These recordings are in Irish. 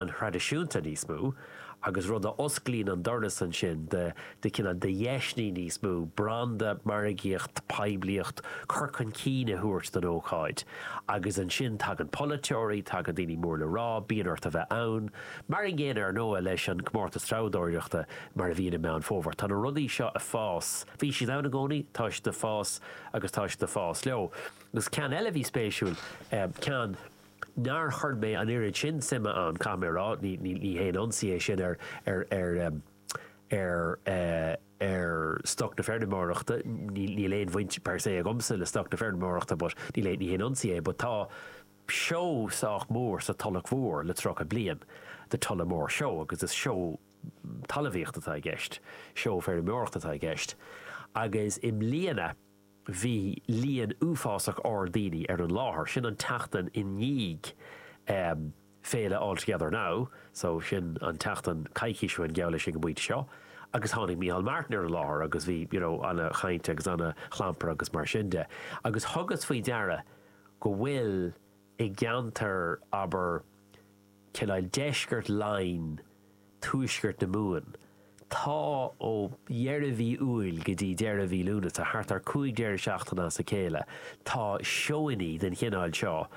an traidisiúnta níos mó agus rud a osclaíonn an doras ansin do chineál de dheiseanna níos mó branda, margaíochta, poiblíocht, cur chun cinn a thabhairt don ócáid agus ansin tagann polaiteoirí, tagann daoine mór le rá, bíonn ort a bheith ann. Mar an gcéanna ar ndóigh leis an gcomórtas treabhdóireachta mar a bhíonn i Meán Fómhair. Tá na rudaí seo ag fás, bhí siad ann i gcónaí, tá sé ag fás agus tá sé ag fás leo. Agus ceann eile a bhí spéisiúil, ceann. Nár chuir mé an oiread sin suime ann, caithfidh mé a rá, ní haon ionsaí é sin ar stoc na feirmeoireachta, níl aon bhaint per se agamsa le stoc na feirmeoireachta but níl ní haon ionsaí é, but tá seó sách mór sa Tulach Mhór le tríocha bliain, The Tullamore Show, agus is seó talamhaíochta atá i gceist, seó feirmeoireachta atá i gceist agus i mbliana, Bhí líon uafásach ard daoine ar an láthair, sin an tseachtain i ndiaidh féile All Together Now, so sin an tseachtain coicís ó shin geall leis ag an bpointe seo, agus tháinig Micheál Martin ar an láthair agus bhí you know an-chaint agus an-chlampar agus mar sin de. Agus thugas faoi deara go bhfuil i gceantar, abair, cineál, deisceart Laighin, tuaisceart na Mumhan. Tá ó dheireadh mhí Iúil go dtí deireadh mhí Lúnasa, thart ar 5 deireadh seachtaine as a chéile, tá seónnaí den chineál seo,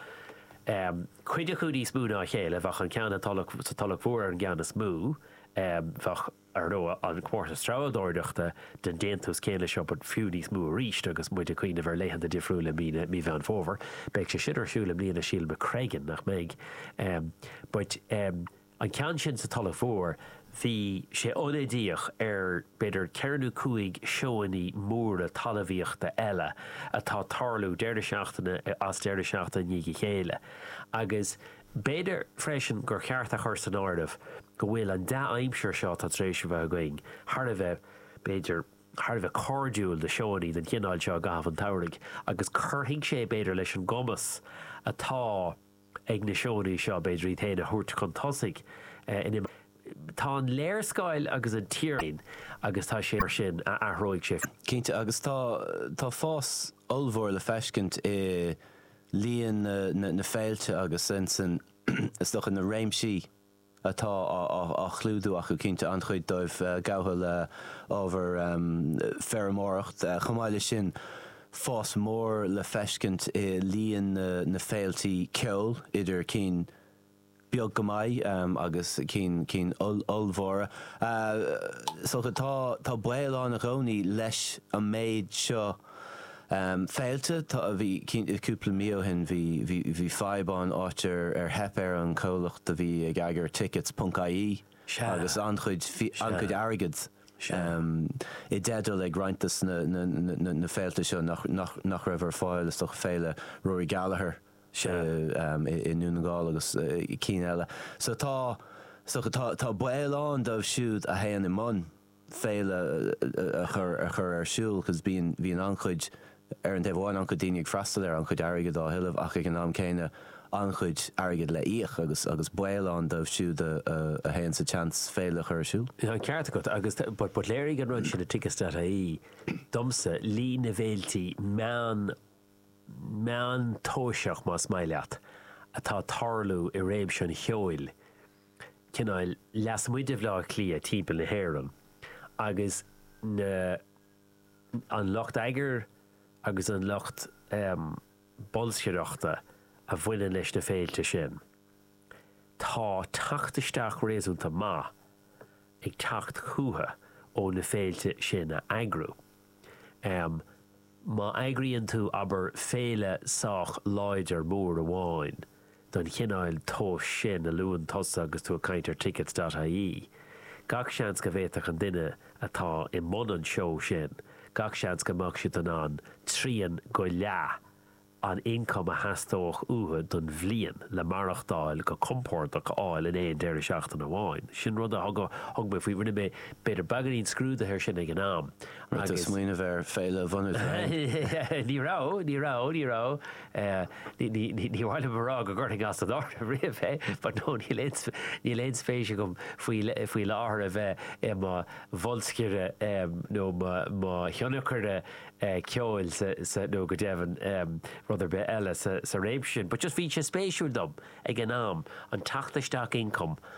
cuid acu níos mó ná a chéile, bheadh an ceann sa Tulach Mhór ar an gceann is mó, bheadh. Ar ndóigh, an comórtas treabhadóireachta den déantús céanna seo, but fiú níos mó arís, agus muid ag cuimhneamh ar laethanta difriúla i mí na, mí Mheán Fómhair, beidh sé sin ar siúl i mbliana, sílim, i Screggan, nach mbeidh? em. but em. an ceann sin sa Tulach Mhór, bhí sé ionadaíoch ar b'fhéidir ceithre nó cúig seónnaí móra talamhaíochta eile atá ag tarlú deireadh seachtaine as deireadh seachtaine i ndiaidh a chéile agus eh. B'fhéidir freisin gur cheart a chur san áireamh go bhfuil an dea-aimsir seo atá tar éis a bheith againn thar a bheith, b'fhéidir, thar a bheith cairdiúil do seónnaí den chineál seo i gcaitheamh an tsamhraidh agus cuirfidh sé, b'fhéidir, leis an gcumas atá ag na seónnaí seo, b'fhéidir, iad féin a thabhairt chun tosaigh in imeacht Tá an léarscáil agus an tír agus tá sé mar sin a athróidh sé. Cinnte, agus tá, tá fás ollmhór le feiscint i. líon na féilte agus ansin, is dócha, na réimsí atá á chlúdú acu. Cinnte, an-chuid dóibh gafa le ábhar feirmeoireacht. Chomh maith leis sin, fás mór le feiscint i líon na féilte ceoil, idir cinn. beag go maith agus cinn ollmhóra. So tá baol ann i gcónaí leis an méid seo féilte. Bhí cúpla mí ó shin, bhí fadhb ann, áit ar theip ar an chomhlacht a bhí ag eagrú tickets ponc ie agus an-chuid airgead i dteideal ag roinnt de na féilte seo nach raibh ar fáil, féile Rory Gallagher. sé i nDún na nGall agus cinn eile so tá so tá baol ann dóibh siúd a théann i mbun féile a chur a chur ar siúl because bíonn bhíonn an-chuid ar an taobh amháin an-chuid daoine ag freastal air an-chuid airgead á thuilleamh ach ag an am céanna an-chuid airgead le íoc agus agus baol ann dóibh siúd a a théann sa tseans féile a chur ar siúl. Tá an ceart agat agus tá but but léirigh an rud sin i tickets.ie domsa líon na bhféiltí meán meántomhaiseach, más maith leat, atá ag tarlú i réimse an cheoil, cineál lasmuigh de Bhleá Cliath timpeall na hÉireann, agus na, an lucht eagair agus an lucht bolscaireachta a bhaineann leis na féilte sin. Tá teacht isteach réasúnta maith ag teacht chucu ó na féilte sin a eagrú. Má eagraíonn tú, abair, féile sách láidir mór amháin den chineál tomhais sin a luann tusa agus tú ag caint ar tickets.ie, gach seans go bhféadfadh an duine atá i mbun an tseó sin, gach seans go mbeadh siad in ann trian go leath an ioncaim a theastódh uathu don bhliain le maireachtáil go compordach a fháil in aon deireadh seachtaine amháin. Sin rud a thugadh, thug mé faoi, rinne mé, b'fhéidir, beagáinín scrúdaithe air sin ag an am agus. Rith do smaoineamh ar fhéile a bhunú féin? Ní raibh, ní raibh, ní raibh, ní maith liom a rá go gcuirfinn as an áireamh riamh é but no níl aon spéis agam faoi láthair a bheith i mo bholscaire nó mo thionscnóir, ceoil sa, nó go deimhin rud ar bith eile sa réimse sin. But just bhí sé spéisiúil dom ag an am an teacht isteach ioncaim